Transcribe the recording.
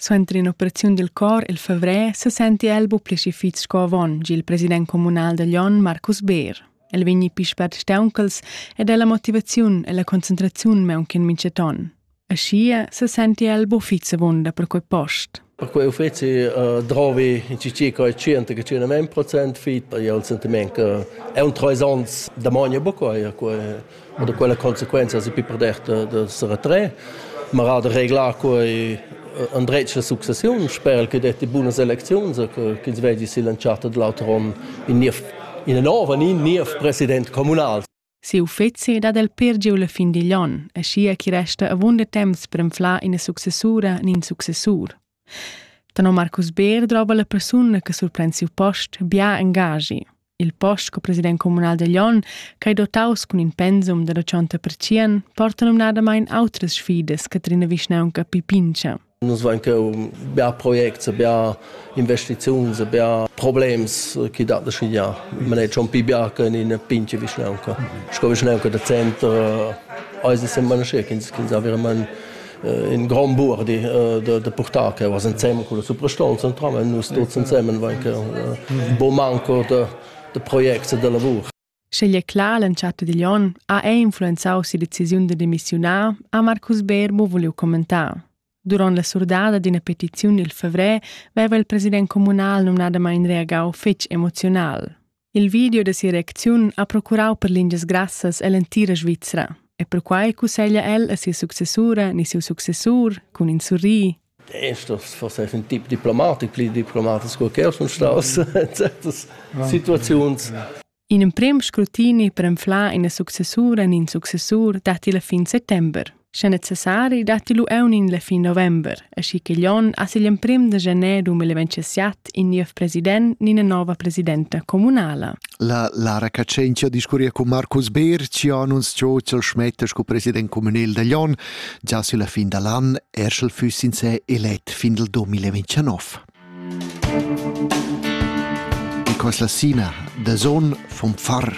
Suenter in'operaziun dil cor il favrer sesenti el buca schi fitg sco avon, gi il president communal da Glion Marcus Beer. El vegni pli spert stauncals ed ha la motivaziun e la concentraziun meunchen mintgaton. Aschia sesenti el buca fitg avunda per quei post. Per quei uffizi uh, drovi in circa 100-100 procent fit. E il sentiment che è un trois ans da magna buca quei Ma da quella consequenza es pi perder da, da se retrer, ma era da reglar quai en dretg la successiun, sper che detti bunas elecziuns, ch'ins vedi silanciato dall'altro onn in niev in nova in niev president communal. Si uffeci dat el per giu la fin digl onn, e schia chi resta avunda temps per inflar ina successura nin successur. Tenor Marcus Beer drova la persuna che surpren siu post bia engaschi. Il post sco president communal da Glion, ch'ei dotaus cun in pensum da dachonta pertschien, porta numnadamain outras sfidas che trina vischnaunca Pipincha. Nus vein cheu bia projects, bia investiziuns, bia problems che dat da schigliar. Man è schon più bianco in una pinche vischnaunca. Sco vischnaunca da centro, eis es semma nasce, ch'ins avere man in grand buor di da, da purtar che was insem con la suprastonza entramen nus tuts ensemen vain che bo manco da, da projects e da lavur Schegli è clar l'entschatta digl onn ha è influenzau si decisiun da demissiunar ha Marcus Berbo voliu commentar. Durant la surdada d'ina petiziun il fevrer veva il president comunal numnadamain reagau fetg emoziunal. Il video da sia reacziun ha procurau per lingias grassas ell'entira Svizra e perquai cusseglia el a sia successura ni siu successur cun in surri Esto forse è un tip diplomatic, pli diplomatic sco che sun staus certas situaziuns. In emprem scrutini per enflar ina successura in in successur datti la fin settember. Sche necessari datti lu eunin la fin november, aschi ch'igl onn as igl emprim da gener 2027 in niev president ni ina nova presidenta communala. La, la recatschentia discurria cun Marcus Beer, ci annunz Churchill Schmetter sco president communal dagl onn, già sur la fin dall'an, erschel fuss in se elet fin del 2029. E quas la sina da zon vom far.